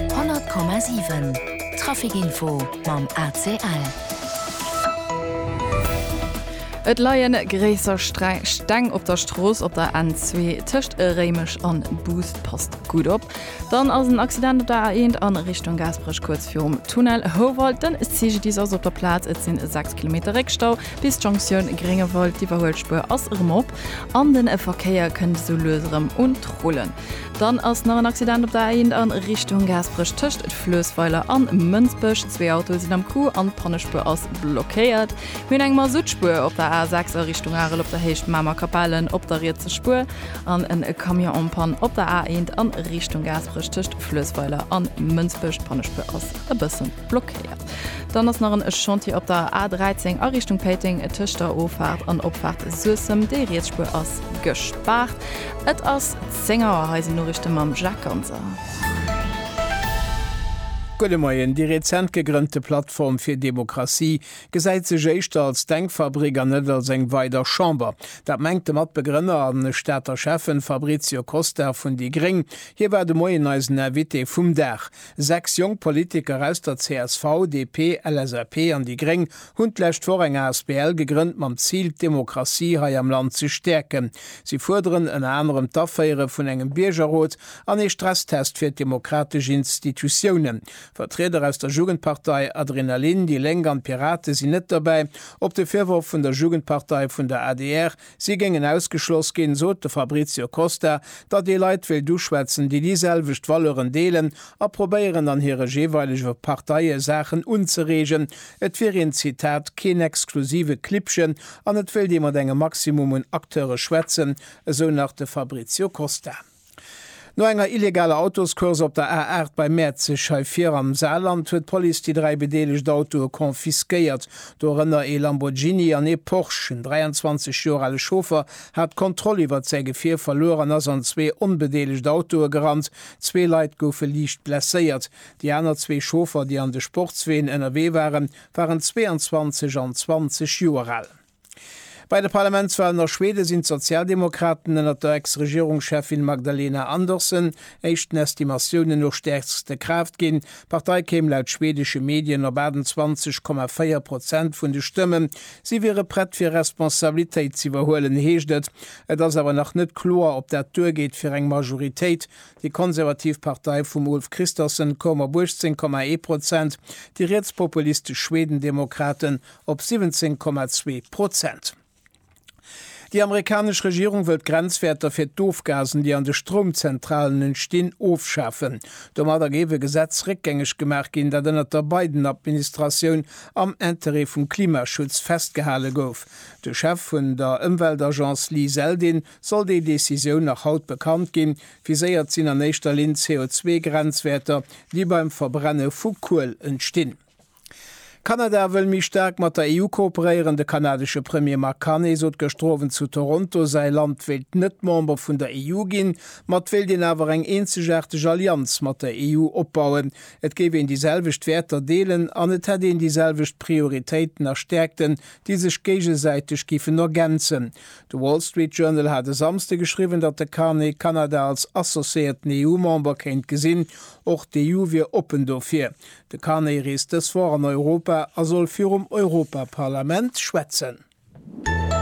100,7 Trafic-Info mam ACL. Et leien gréisser Steng op der Strooss op der N2 tëscht Réimech an Boust. Passt gutt op, dann ass en Accident op der A1 an Richtung Gaasperech kuerz virum Tunnel Houwald. Den CGDIS ass op der Plaz, et sinn 6 Kilometer Réckstau bis d'Jonctioun Gréngewald. D'Iwwerhuelspuer ass erëm op an de Verkéier kënnt esou lues erëm un d'Rullen. Dann ass nach en Accident op der A1 a Richtung Gaasperech tëscht Fluessweiler an Mënsbech. Zwee Autoe sinn am Coup an d'Pannespuer ass blockéiert. Mir hunn eng Masuttspuer op der A6 a Richtung Arel op der Héicht Mamer Kapellen op der rietser Spuer an en Camion en panne op der A1 a Richtung Gaasperech tëscht Fluessweiler an Mënsbech. D'Pannespuer ass e bëssen. Blockéiert. Dann ass nach en Chantier op der A 13 a Richtung Péiteng tëscht der Offahrt an Opfahrt Suessem. Déi riets Spuer ass gespaart. Et ass 10 Auer, hei sinn d'Noriichte mam Jacques Ganser. Gudde Moien, Déi rezent gegrënnte Plattform fir Demokratie gesäit sech éischter als Denkfabrik an net als eng weider Chamber. Dat mengt de Matbegrënner a Stater Schäffen Fabrizio Costa vun déi gréng. Hie war de Moien eisen Invité vum Dag. Sechs jonk Politiker aus der csv, DP, LSAP an déi gréng hunn d'lescht Woch eng asbl gegrënnt mam Zil, d'Demokratie hei am Land ze stäerken. Si fuerderen ënner anerem d'Aféiere vun engem Biergerrot an ee Stresstest fir d'demokratesch Institutiounen. Vertrieder aus der Jugendpartei, Adrenalin, déi Lénk an d'Pirate sinn net dobäi. Op de Virworf vun der Jugendpartei vun der adr, Si géingen ausgeschloss ginn, sot de Fabrizio Costa, datt ee Leit wéilt uschwätzen, déi déi selwecht Valeuren deelen a probéieren an hire jeeweilege Parteie Saachen unzereegen. Et wier een, Zitat, keen exklusive Klibbchen an et wéilt ee mat engem Maximum un Acteure schwätzen, esou nach de Fabrizio Costa. No enger illegaler Autoscourse op der A8 bei Mäerzeg hei vir am Saarland huet d'Police déi dräi bedeelegt Autoe confisquéiert. Dorënner ee Lamborghini an ee Porsche. En 23 Joer ale Chauffer hat d'Kontroll iwwert säi Gefier verluer an ass an zwee onbedeelegt Autoe gerannt. Zwee Leit goufe liicht blesséiert. Déi aner zwee Chauffer, déi an de Sportsween ënnerwee waren, waren 22 an 20 Joer al. Bei de Parlamentswalen a Schweden sinn d'Sozialdemokraten ënnert der Ex-Regierungscheffin Magdalena Andersson éischt den Estimatiounen no stäerkste Kraaft ginn. D'Partei kéim laut schwedesche Medien op 28,4 Prozent vun de Stëmmen. Si wiere prett fir Responsabilitéit ze iwwerhuelen, heescht et. Et ass awer nach net kloer, ob dat duergeet fir eng Majoritéit. Déi konservativ Partei vum Ulf Kristersson koum op 18,1 Prozent, déi rietspopulistesch Schwedendemokraten op 17,2 Prozent. Déi amerikanesch Regierung wëll d'Grenzwäerter fir d'Ofgasen, déi an de Stroumzentralen entstinn, ofschafen. Domadder géif e Gesetz réckgängeg gemaach ginn, dat ënnert der Biden-Administratioun am Interêt vum Klimaschutz festgehale gouf. De Chef vun der Ëmweltagence Lee Zeldin soll déi Decisioun nach haut bekannt ginn. Viséiert sinn an éischter Linn d'CO2-Grenzwäerter, déi beim Verbrenne vu Kuel entstinn. Kanada wëll méi staark mat der EU kooperéieren. De kanadesche Premier Mark Carney sot gëschter Owend zu Toronto, säi Land wéilt net Member vun der EU ginn, ma et wéilt een awer eng eenzegaarteg Allianz mat der EU opbauen. Et géif een déi selwecht Wäerter deelen an et hätt een déi selwecht Prioritéiten a Stäerkten, déi sech géigesäiteg giffen ergänzen. De Wall Street Journal hat e Samsde geschriwwen, datt de Carney Kanada als associéierten EU-Member kéint gesinn. Och d'EU wier oppen dofir. De Carney reest dës Woch an Europa a soll virum Europaparlament schwätzen.